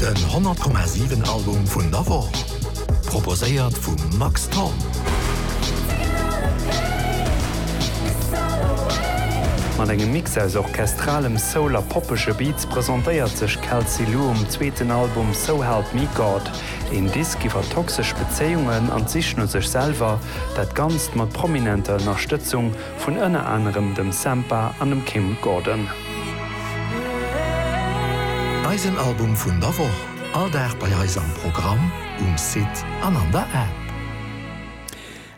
Den 100,7 Album vun der Woch, proposéiert vum Max Thorn. Mat engem Mix aus orchestralem Soul a poppege Beats presentéiert sech Kelsey Lu um zweeten Album So Help Me God. Een Disk iwwer toxesch Bezéiungen an d'Sich no sech selwer, dat Ganzt mat prominenter Ënnerstëtzung vun ënner anerem dem Sampha an dem Kim Gordon. Eisen Album vun der Woch, all Dag bei eis am Programm, um Site an an der App.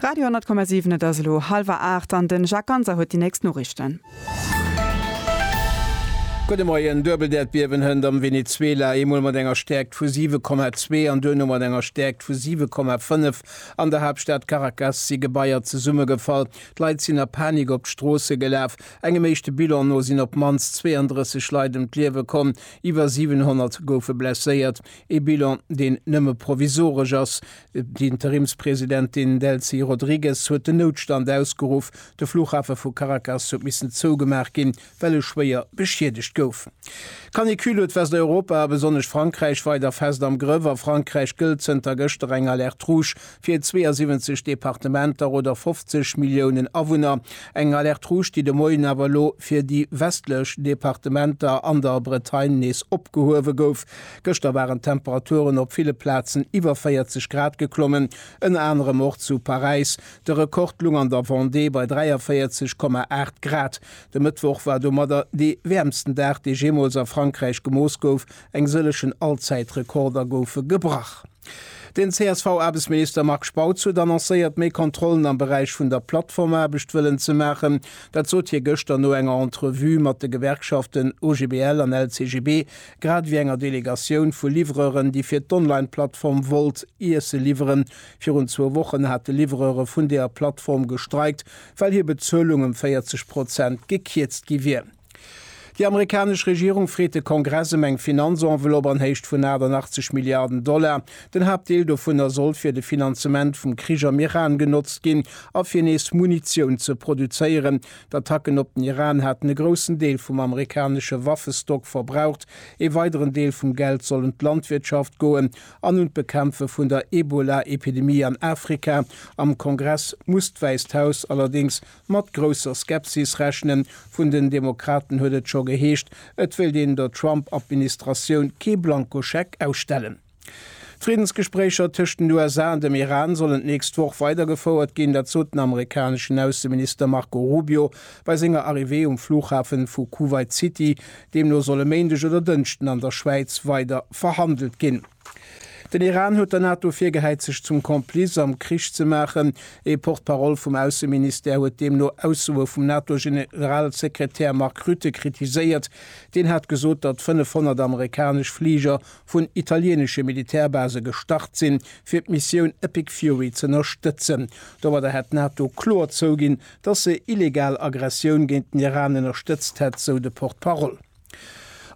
Radio 10,7 Et ass elo hallwer 8 an den Jacques Ganser huet déi nächst Noriichten. Gudde Moien, Duebeldäerdbiewen hënt am Venezuela, eemol mat enger Stäerkt vu 7,2 an duerno mat enger Stäerkt vu 7,5. An der Haaptstad Caracas si Gebaier zesummegefall. D'Leit sinn a Panik op d'Stroosse gelaf. Engem éischte Bilan no sinn op d'mannst 32 Leit ëm d'Liewe komm, iwwer 700 goufe blesséiert. Ee Bilan, deen nëmme provisoresch ass. D'Interimspresidentin Delcy Rodrigues huet den Noutstand ausgeruff. De Flughafe vu Caracas huet missen zougemaach ginn. well e schwéier beschiedegt gouf. D'Canicule huet Westeuropa a besonnesch Frankräich weider fest am Grëff. A Frankräich gëllt zënter gëschter eng Alerte rouge fir 72 Departementer oder 50 Milliounen Awunner. Eng Alerte rouge, déi de Moien awer elo fir déi westlech Departementer an der Bretagne nees opgehuewe gouf. Gëschter waren d'Temperaturen op ville Plazen iwwer 40 Grad geklommen, ënner anerem och zu Paräis. De Rekord lung an der Vendée bei 43,8 Grad. De Mëttwoch war domadder dee wäermsten Dag, dee jeemools a Frankräich gemooss gouf. Eng sëllegen Allzäitrekorder goufe gebrach. Den CSV-Aarbechtsminister Marc Spautz huet annoncéiert, méi Kontrollen am Beräich vun der Plattformaarbecht wëllen ze maachen. Dat sot hie gëschter no enger Entrevue mat de Gewerkschaften OGBL an LCGB, grad ewéi enger Delegatioun vu Livreuren, déi fir d'Online-Plattform Wolt Iesse liwweren. Virun zwou Wochen hate Livreure vun deeër Plattform gestreikt, well hir Bezuelung ëm 40 Prozent gekierzt gi wier. Déi amerikanesch Regierung freet de Kongress ëm eng Finanzenveloppe an Héicht vun 88 Milliarden Dollar. Den Haaptdeel dovunner soll fir de Finanzement vum Krich am Iran genotzt ginn a fir nees Munitioun ze produzéieren. D'Attacken op den Iran haten e groussen Deel vum amerikanesche Waffestock verbraucht. Ee weideren Deel vum Geld soll un d'Landwirtschaft goen, an un d'Bekämpfe vun der Ebola-Epidemie an Afrika. Am Kongress muss d'Wäisst Haus allerdéngs mat grousser Skepsis rechnen. Vun den Demokraten huet et scho geheescht, et wéilt een der Trump-Administratioun kee Blankoscheck ausstellen. D'Friddensgespréicher tëscht den USA an dem Iran sollen d'nächst Woch weidergefouert ginn. Dat sot den amerikaneschen Ausseminister Marco Rubio bei senger Arrivée um Flughafen vu Kuwait City, Deemno soll e Méindeg oder Dënschden an der Schwäiz weider verhandelt ginn. Den Iran huet der NATO virgehäit sech zum Complice am Krich ze maachen. Ee Porte-parole vum Ausseministère huet deemno Aussoe vum NATO-Generalsekretär Mark Rutte kritiséiert. Deen hat gesot, datt 500 amerikanesch Fliger vun italieenesche Militärbase gestart sinn, fir d'Missioun Epic Fury z'ënnerstëtzen. Domadder hätt d'NATO kloer zouginn, datt se illegal Aggressioun géint den Iran ënnerstëtzt hätt, sou de Porte-Parole.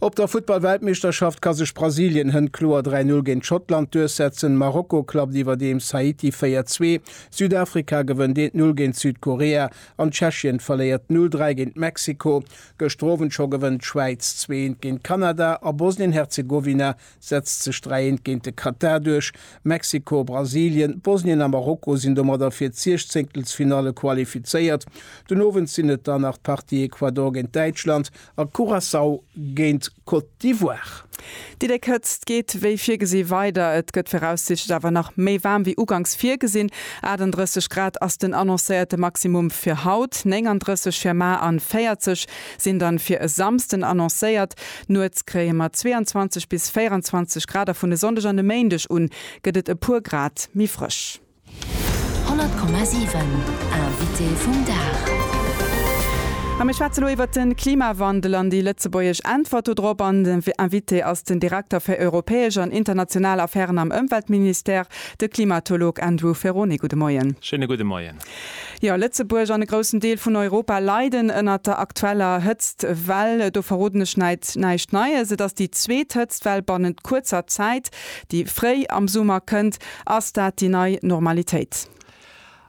Op der Futtball-Weltmeeschterschaft ka sech Brasilien hënt kloer 3 Null géint Schottland duerchsetzen. Marokko klappt iwwerdeems Haiti 4 Zwee. Südafrika gewënnt 1 Null géint Südkorea an Tschechien verléiert 0 Dräi géint Mexiko. Gëschter Owend scho gewënnt d'Schwäiz 2 Eent géint Kanada a Bosnien-Herzegowina setzt sech dräieent géint de Katar duerch. Mexiko, Brasilien, Bosnien a Marokko sinn domadder fir d'Siechzéngtelsfinalle qualifizéiert. Den Owend sinn et dann nach d'Partie Ecuador géint Däitschland a Curaçao géint Côte d'Ivoire. Déi déck Hëtzt geet wéi virgesi weider. Et gëtt viraussiichtlech awer nach méi waarm wéi uganks virgesinn. 38 Grad ass den annoncéierte Maximum fir haut, 39 fir mar an 40. Sinn dann fir e Samsden annoncéiert. Nuets kréie mer 22 bis 24 Grad a vun e Sonndeg an e Méindeg un gëtt et e puer Grad méi frësch. 100,7 Invité vum Dag. A mir schwätze lo iwwert de Klimawandel an déi lëtzebuergesch Äntwert do drop. An den Invité ass den Direkter fir europäesch an international Affären am Ëmweltministère, de Klimatolog Andrew Ferrone. Gudde Moien. Schéine gudde Moien. Jo, Lëtzebuerg an e groussen Deel vun Europa leiden ënnert der aktueller Hëtztwell. Do verroden ech neit näischt Neies. Et ass déi zweet Hëtztwell bannent kuerzer Zäit, déi fréi am Summer kënnt. Ass dat déi nei Normalitéit?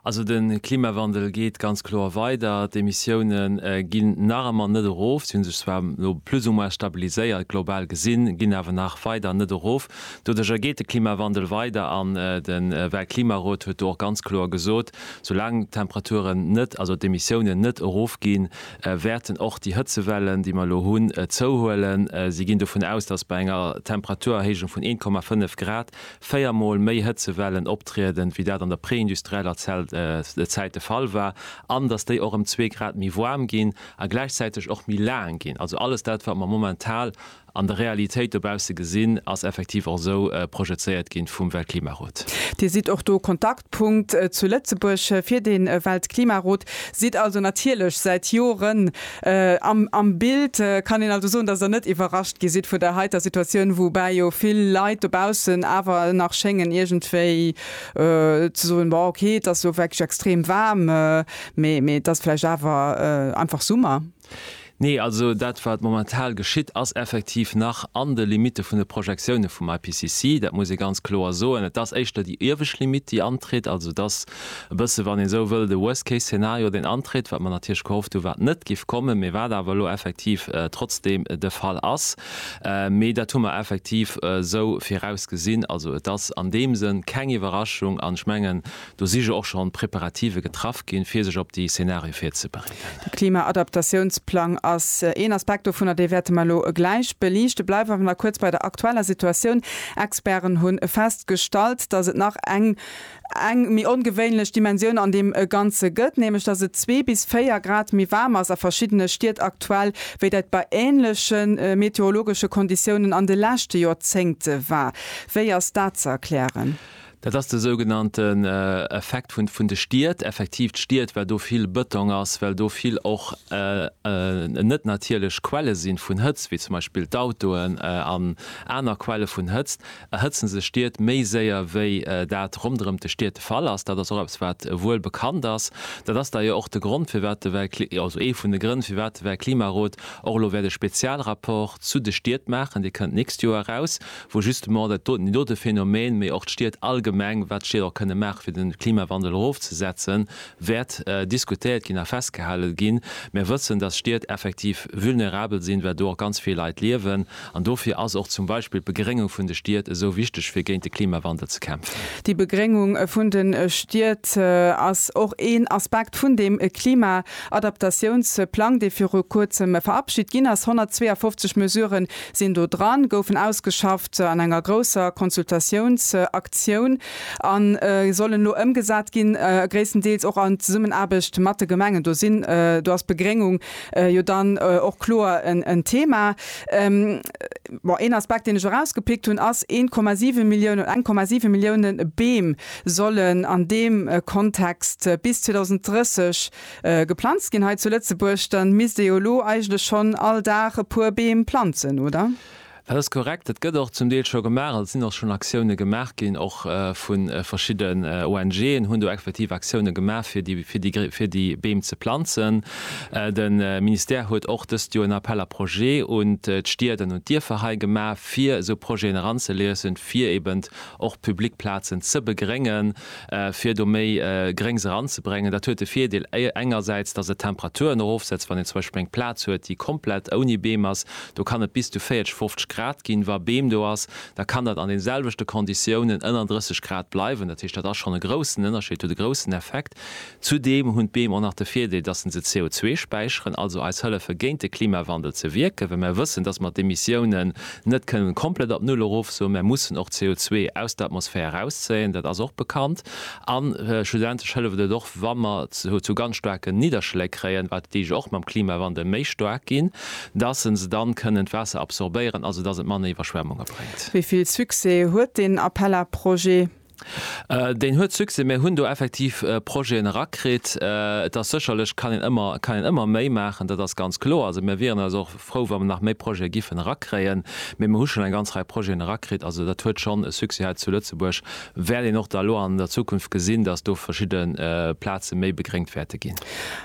Also de Klimawandel geet ganz kloer weider. D'Emissioune ginn nach ëmmer net erof. Si hu sech zwar elo plus ou moins stabiliséiert, global gesinn, ginn awer nach weider net erof. Doduerjer geet de Klimawandel weider an de Weltklimarot huet do och ganz kloer gesot, soulaang d'Temperaturen net, also d'Emissiounen net erofginn, wäerten och déi Hëtzewellen, déi mer elo hunn, zouhuelen. Si ginn dovun aus, datt bei enger Temperaturerhéijung vun 1,5 Grad véier Mol méi Hëtzewellen optrieden, wéi dat an der preindustrieller Zäit de Fall war, an datt déi och ëm zwee Grad méi waarm ginn a gläichzäiteg och méi laang ginn. Also alles dat, wat mer momentan An der Realitéit dobausse gesinn, ass effektiv och esou projezéiert ginn vum Weltklimarot. Dir sidd och do Kontaktpunkt zu Lëtzebuerg fir de Weltklimarot, sidd also natierlech säit Joren am Bild. Kann een also soen, dass Der net iwwerrascht gi sidd vun der heiter Situatioun, woubäi jo vill Leit dobaussen awer nach schéngen iergendwéi ze soen, bon ok, et ass jo wierklech extrem waarm, mee et ass vläicht awer einfach Summer? Nee, also dat wat momentan geschitt ass effektiv nach an de Limitte vun de Projektioune vum IPCC, dat muss ee ganz kloer soen. Et ass éischter déi iewescht Limitt déi antritt, also et ass e bësse wann ee sou wëll de Worst Case Szenario deen antritt, wat mer natierlech gehofft hu wat net géif kommen, mee wat awer elo effektiv trotzdeem de Fall ass. Mee dat hu mer effektiv esou virausgesinn, also et ass an deem Sënn keng Iwwerraschung an ech mengen Do si jo och schonn Preparative getraff ginn, fir sech op déi Zenarie virzebereeden. De Klima-Adaptatiounsplang ass een Aspekt dovunner. Dee wäerte mer elo gläich beliichten. Bleiwe mer nach kuerz bei der aktueller Situatioun. Experten hu festgestallt, dass et nach eng eng méi ongewéinlech Dimensioun an deem Ganze gëtt, nämlech dass et zwee bis véier Grad méi waarm ass a verschiddene Stied aktuell, wéi dat bei änleche meteorologesche Konditiounen an de leschte Jorzéngte war. Wéi ass dat ze erklären? Dat ass de sougenannten Effekt vun de Stied, effektiv d'Stied, well do vill Bëtong ass, well do vill och net natierlech Quelle si vun Hëtzt, wéi zum Beispill d'Autoen an aner Quelle vun Hëtzt, erhëtze sech Stied méi séier, wéi dat ronderëm d'Stied de Fall ass. Dat ass och eppes, wat wuel bekannt ass. Dat ass da jo och de Grond, firwat de Welt, also ee vun de Grënn, firwat de Weltklimarot och elo wäert e Spezialrapport zu de Stied maachen, dee kënnt d'nächst Joer eraus, wou justement dat doten, dee dote Phänomen, mee och d'Stied allgemeng, wat d'Stied och kënne maachen, fir de Klimawandel erofzesetzen, wäert diskutéiert ginn a festgehale ginn. Mir wëssen, dass Stied effektiv vulnerabel sinn, well do och ganz vill Leit liewen. An dofir ass och zum Beispill d'Begréngung vun de Stied esou wichteg, fir géint de Klimawandel ze kämpfen. Déi Begréngung vun de Stied ass och een Aspekt vun deem Klima-Adaptatiounsplang, dee viru kuerzem verabschit ginn ass. 152 Mesuren sinn do dran, goufen ausgeschafft an enger grousser Konsultatiouns-Aktioun a sollen elo ëmgesat ginn, gréisstendeels och an Zesummenaarbecht mat de Gemengen. Do sinn, do ass d'Begréngung jo dann och kloer en Thema. Bon, een Aspekt, deen ech erausgepickt hunn, ass 1,7 Milliounen oder eng Komma siwe Milliounen Beem sollen an deem Kontext bis 2030 Geplanzt ginn hei zu Lëtzebuerg, dann misst ee jo elo eigentlech schonn all Dag e puer Beem planzen, oder? Dat ass korrekt, dat gëtt och zum Deel scho gemaach, also et sinn och schonn Aktiounen gemaach ginn, och vu verschidden ONGen hunn do effektiv Aktiounen gemaach fir déi Beem ze planzen. De Ministère huet och dëst Joer en Appel à projets un d'Stied an un d'Dierfer hei gemaach, fir esou Projeten eranzeliesen, fir eben och public Plazen ze begréngen. fir do méi Gréngs eranzebréngen. Dat huet de Virdeel engersäits, dass et d'Temperaturen erofsetzt. Wann een zum Beispill eng Plaz huet, déi komplett ouni Beem ass, do kann et bis zu 40, 50 Grad ginn. Wa Beem do ass, da kann dat an den selwechte Konditiounen ënner 30 Grad bleiwen. Dat heescht, dat ass schonn e groussen Ënnerscheed, huet e groussen Effekt. Zudeem hunn d'Beem och nach de Virdeel, dass se se CO2 späicheren, also eis hëllefe géint de Klimawandel ze wierken, well mer wëssen, dass mer d'Emissiounen net kënnen komplett op Null erofsoen. Mer mussen och CO2 aus der Atmosphär erauszéien, dat ass och bekannt. A schlussendlech hëlleft et och, wa mer zu ganz staarken Nidderschléi kréien, wat déi jo och mam Klimawandel méi staark ginn, dass se dann kënnen d'Waasser absorbéieren, also dass et manner Iwwerschwemmunge bréngt. Wéi vill Succès huet deen Appel à projets? Deen huet Succès, mir hunn do effektiv Projeten erakritt. Et ass sécherlech, kann een ëmmer, kann een ëmmer méi maachen, dat ass ganz kloer. Also mir wieren also och frou, wa mer nach méi Projete giffen erakréien, mee mer hu schonn eng ganz Rei Projeten erakritt. Also dat huet schonn e Succès hei zu Lëtzebuerg. Wäert een och da elo an der Zukunft gesinn, datt do verschidde Plaze méi begréngt wäerte ginn.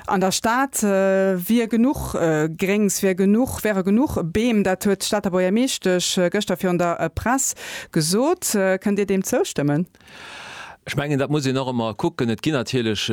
An der Stad wier genuch Gréngs, wier genuch, wäere genuch Beem, dat huet d'Stater Buergermeeschtesch gëschter virun der Press Gesot. Kënnt Dir deem zoustëmmen? Ech mengen, dat muss een och ëmmer kucken. Et ginn natierlech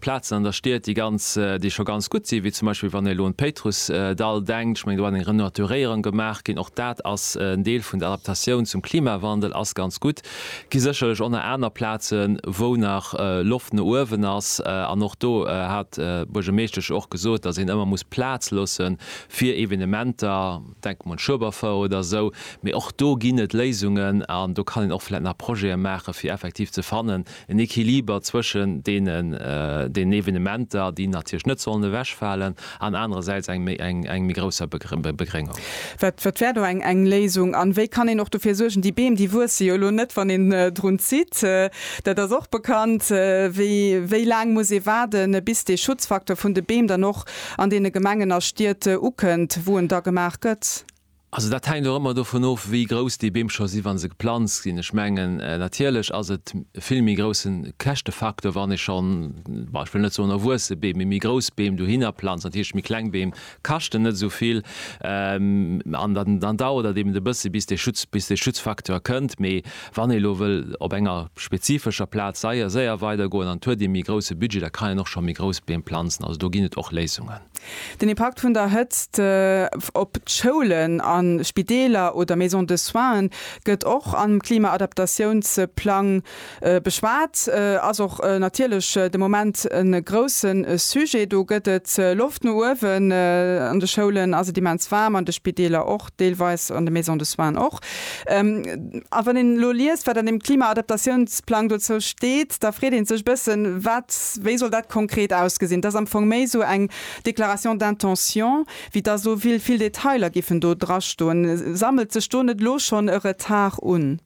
Plazen an der Stied, déi ganz, déi scho ganz gutt sinn, wéi zum Beispill wann ee elo un d'Péitrussdall denkt. Ech mengen, do ass eng Renaturéierung gemaach ginn. Och dat ass en Deel vun der Adaptatioun zum Klimawandel, ass ganz gutt. Et gi sécherlech och nach aner Plazen, wou nach Loft no uewen ass. An och do hat d'Buergermeeschtesch och gesot, datt een ëmmer muss Plaz loosse fir Evenementer. Denken un Schueberfouer oder esou. Mee och do ginn et Léisungen an do kann een och vläicht nach Projete maachen, fir effektiv ze fannen, en Equiliber zwëschen deenen, deenen Evenementer, déi natierlech net sollen ewechfalen, an anerersäits engem méi grousser Begréngung. Wat wär do eng Léisung? An wéi kann een och dofir suergen, déi Beem, déi wuesse jo elo net, wann een drun zitt, dat ass och bekannt, wéi laang muss ee waarden, bis dee Schutzfaktor vun de Beem dann och an deene Gemengen a Stied ukënnt, wou en da gemaach gëtt? Also dat hänkt och ëmmer dovun of, wéi grouss déi Beem scho si wa se geplanzt ginn. Ech mengen, natierlech ass et e vill méi grousse Käschtefaktor, wann ee schonn, bon, ech wëll net soen erwuesse Beem, mee méi grouss Beem dohinner planzt. Natierlech méi kleng Beem kaschten net esou vill an dann dauert et eben e bësse bis dee Schutz, bis dee Schutzfaktor kënnt. Mee Wann ee lo wëll op enger spezifescher Plaz seier, séier weidergoen an et huet ee méi grousse Budget, da kann een och scho méi grouss Beem planzen. Also do ginn et och Léisungen. Den Impakt vun der Hëtzt op d'Schoulen a Spideeler oder Maisons de soins gëtt och am Klimaadaptatiounsplang beschwat, ass och natierlech de Moment e grousse Sujet. Do gëtt et Loft no uewen, an de Schoulen ass et immens waarm, an de Spideeler och. deelweis an de Maisons de soins och. A wann een elo liest, wat an deem Klimaadaptatiounsplang dozou steet, da freet ee sech e bëssen, wat, wéi soll dat konkret ausgesinn? Et ass am Fong méi esou eng Déclaration d'intention, wéi dass elo vill Detailer giffen do drastoen. Sammelt sech do net elo schonn e Retard un?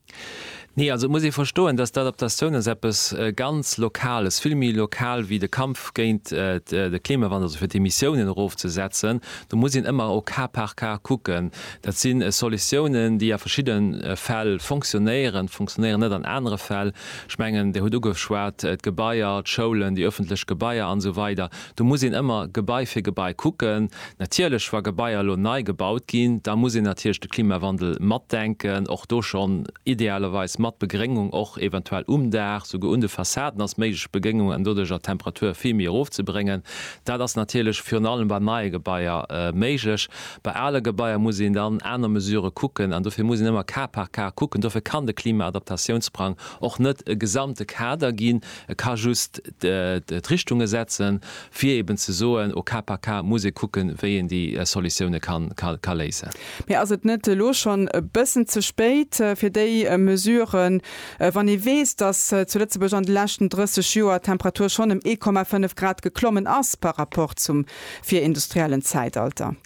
Nee, also et muss ee verstoen, dass d'Adaptatioun ass eppes ganz Lokales, vill méi lokal wéi de Kampf géint de Klimawandel, also fir d'Emissiounen erofzesetzen. Do muss een ëmmer au cas par cas kucken. Dat si Solutiounen, déi a verschidde Fäll fonctionnéieren, fonctionnéieren net an anere Fäll. Ech mengen, Dir hutt ugeschwat d'Gebaier, d'Schoulen, déi öffentlech Gebaier an esou weider. Do muss een ëmmer Gebai fir Gebai kucken. Natierlech, wa Gebaier elo nei gebaut ginn, da muss een natierlech de Klimawandel matdenken. Och do schonn idealerweis mat Begréngung, och eventuell um Daach, souguer un de Fassaden ass méiglech Begéngung, an doduercher d'Temperature vill méi erofzebréngen. Dat ass natierlech virun allem bei neie Gebaier méiglech. Bei ale Gebaier muss een dann aner Mesurë kucken an dofir muss een ëmmer cas par cas kucken. Dofir kann de Klimaadaptatiounsprang och net e gesamte Kader ginn, E ka just d'Richtunge setzen, fir eben ze soen, au cas par cas muss ee kucken, wéi een déi Solutioune ka léisen. Mee ass et net elo schonn e bëssen ze spéit fir déi Mesuren, wann ee weess, datt zu Lëtzebuerg an de leschten 30 Joer d'Temperatur schonn ëm 1,5 Grad geklommen ass par rapport zum virindustriellen Zäitalter?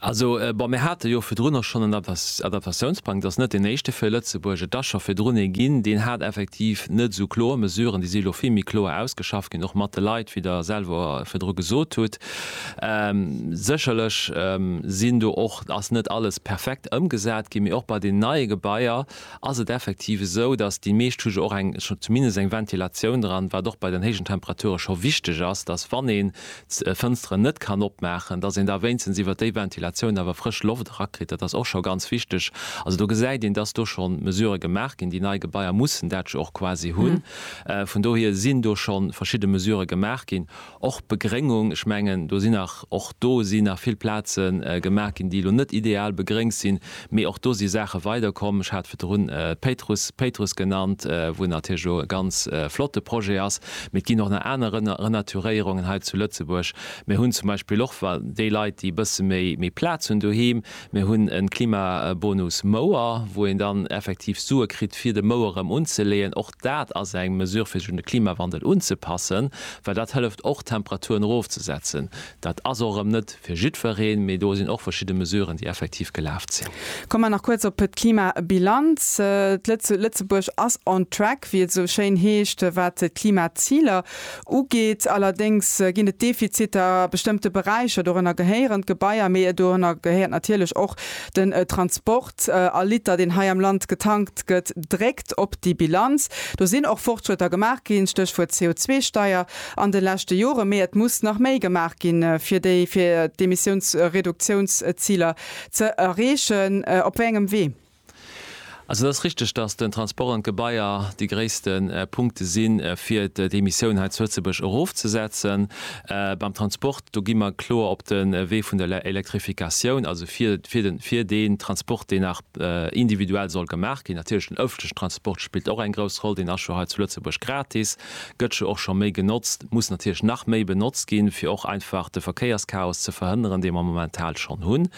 Also, bon, mir hate jo virdrun och schonn en Adaptatiounsplang, et ass net deen éischte fir Lëtzebuerg, et ass scho virdrun ee ginn, deen hat effektiv net esou kloer Mesuren, déi si elo vill méi kloer ausgeschafft ginn, och mat de Leit, wéi Der selwer virdru gesot hutt. Sécherlech sinn do och, ass net alles perfekt ëmgesat ginn, mee och bei den neie Gebaier ass et effektiv esou, datt déi meescht hu jo och eng, zumindest eng Ventilatioun dran, wat och bei den héijen Temperature scho wichteg ass, datt wann een d'Fënsteren net kann opmaachen, dass een da wéinstens iwwert déi Ventilatioun awer frësch Loft erakritt. Dat ass och scho ganz wichteg. Also do gesäit een, dass do scho Mesurë gemaach ginn. Déi nei Gebaier mussen dat jo och quasi hunn. Vun dohier sinn do scho verschidde Mesurë gemaach ginn. Och d'Begréngung, ech mengen do sinn nach, och do si nach vill Plaze gemaach ginn, déi elo net ideal begréngt sinn, Mee och do si Saache weider komm. Ech hat virdrun d'Péitruss, Péitruss genannt, wou natierlech elo e ganz flotte Projet ass. Mee et ginn och nach aner Renaturéierungen hei zu Lëtzebuerg. Mir hunn zum Beispill och wa déi Leit, déi e bësse méi Plaz hunn doheem, mir hunn e Klimabonus Mouer, wou een dann effektiv Sue kritt, fir de Mouer erëm unzeleeën. Och dat ass eng Mesure, fir sech un de Klimawandel unzepassen, well dat hëlleft och d'Temperaturen erofzesetzen. Dat ass och erëm net fir jiddwereen, mee do sinn och verschidde Mesuren, déi effektiv gelaf sinn. Komme mer nach kuerz op d'Klimabilanz. Lëtzebuerg ass on track, wéi et esou schéin heescht, wat d'Klimaziler ugeet. Allerdéngs ginn et Defiziter a bestëmmte Beräicher. Dorënner gehéieren d'Gebaier, mee dorënner gehéiert natierlech och den Transport. All Liter, deen hei am Land getankt gëtt, dréckt op déi Bilanz. Do sinn och Fortschrëtter gemaach ginn, Stéchwuert CO2-Steier, an de leschte Jore. Mee et muss nach méi gemaach ginn, fir d'Emissiounsreduktiounsziler ze erreechen. Op wéi engem Wee? Also et ass richteg, datt den Transport an d'Gebaier déi gréisste Punkte sinn, fir d'Emissioun hei zu Lëtzebuerg erofzesetzen. Beim Transport Do gi mer kloer op de Wee vun der Elektrifikatioun, also fir deen Transport, deen nach individuell soll gemaach ginn. Natierlech den ëffentlechen Transport spillt och eng grouss Roll, deen ass scho hei zu Lëtzebuerg gratis, gëtt scho och scho méi genotzt, muss natierlech nach méi benotzt ginn, fir och einfach de Verkéierschaos ze verhënneren, dee mer momentan schonn hunn.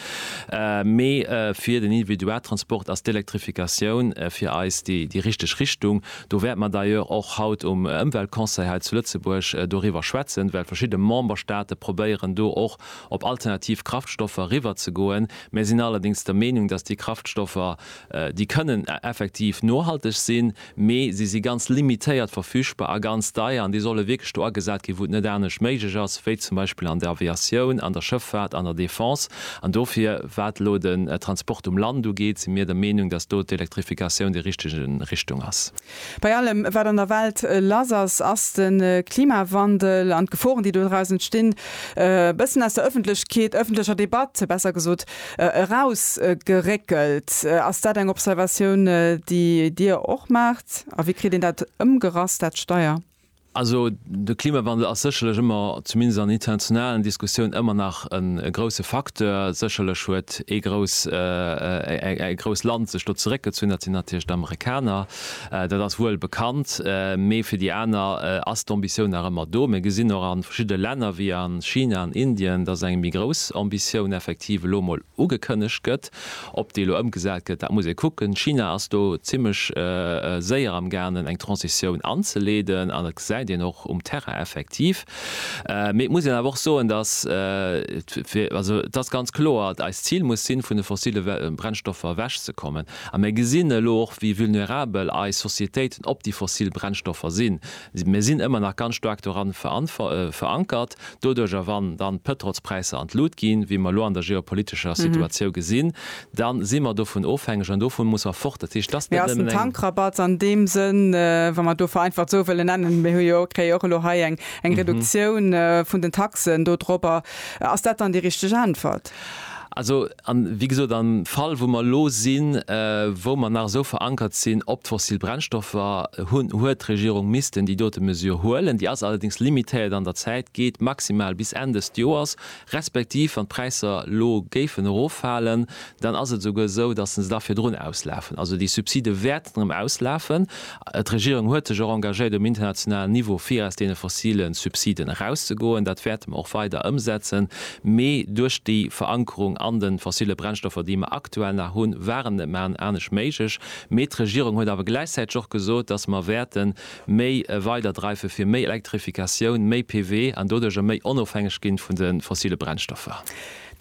Mee fir den Individualtransport ass d'Elektrifikatioun fir eis déi richteg Richtung. Do wäerte mer d'ailleurs och haut um Ëmweltconseil hei zu Lëtzebuerg doriwwer schwätzen, well verschidde Memberstaate probéieren do och op alternativ Kraftstoffer eriwwerzegoen. Mir sinn allerdéngs der Meenung, datt déi Kraftstoffer, déi kënnen effektiv nohalteg sinn, mee si si ganz limitéiert verfügbar a ganz deier an déi solle wierklech do agesat ginn, wou et net anescht méiglech ass, wéi zum Beispill an der Aviatioun, an der Schëffaart, an der Defense. An dofir, wat elo den Transport um Land ugeet, si mir der Meenung, datt do d'Elektrifikatioun déi richteg Richtung ass. Bei allem, wat an der Welt lass ass, ass de Klimawandel an d'Geforen, déi dodraus entstinn, e bëssen aus der Ëffentlechkeet, ëffentlecher Debatt besser gesot, erausgeréckelt. Ass dat eng Observatioun, déi Dir och maacht? A wéi kritt een dat ëmgerasst, dat Steier? Also de Klimawandel ass sécherlech ëmmer, zumindest an internationalen Diskussiounen, ëmmer nach e grousse Facteur. Sécherlech huet ee grouss, ee grousst Land sech do zeréckgezunn, dat sinn natierlech d'Amerikaner, dat ass wuel bekannt. Mee fir déi aner ass d'Ambitioun nach ëmmer do. Mir gesinn och a verschiddene Länner wéi a China an Indien, datt eng méi grouss Ambitioun effektiv elo emol ugekënnegt gëtt. Ob déi elo ëmgesat gëtt, dat muss ee kucken. China ass do zimmlech séier am gaangen, eng Transitioun anzeleeden, an dat gesäit een och um Terrain effektiv. Mee et muss een awer och soen, dass, also et ass ganz kloer, et eist Zil muss sinn, vun de fossille Brennstoffer ewechzekommen. A mir gesinn elo och, wéi vulnerabel eis Societéiten op déi fossil Brennstoffer sinn. Mir sinn ëmmer nach ganz staark doran verankert. Doduerjer, wann dann d'Pëtrols-Präisser an d'Lut ginn, wéi mer elo an der geopolitescher Situatiou gesinn, da si mer dovun ofhängeg an dovu muss mer fort. Dat heescht, dass net nëmmen eng. Mee ass den Tankrabatt an deem Sënn, wa mer do vereinfacht esou wëllen nennen, mir hu jo, kréie jo och elo hei eng Reduktioun vun den Taxen dodrop, ass dat dann déi richteg Äntwert? Also A wéi gesot, am Fall wou mer elo sinn, wou mer nach esou verankert sinn op d'fossil Brennstoffer hunn, huet d'Regierung missten déi dote Mesure huelen. Déi ass allerdéngs limitéiert an der Zäit, geet maximal bis Enn dëst Joers, respektiv wann d'Präisser elo géifen eroffalen, dann ass et esouguer esou, datt se da virdrun auslafen. Also déi Subside wäerten erëm auslafen D'Regierung huet sech och engagéiert um internationalen Niveau fir aus deene fossile Subsiden erauszegoen. Dat wäerte mer och weider ëmsetzen. Mee duerch déi Verankerung an de fossile Brennstoffer, déi mer aktuell nach hunn, war et net méi anescht méiglech. Mee d'Regierung huet awer gläichzäiteg och gesot, dass mer wäerte méi weiderdreife fir méi Elektrifikatioun, méi PV an doduerjer méi onofhängeg ginn vun de fossile Brennstoffer.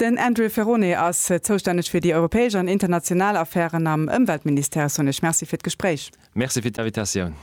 Den Andrew Ferrone ass zoustänneg fir déi europäesch an international Affären am Ëmweltministère. Sonesch Merci fir d'Gespréich. Merci fir d'Invitatioun.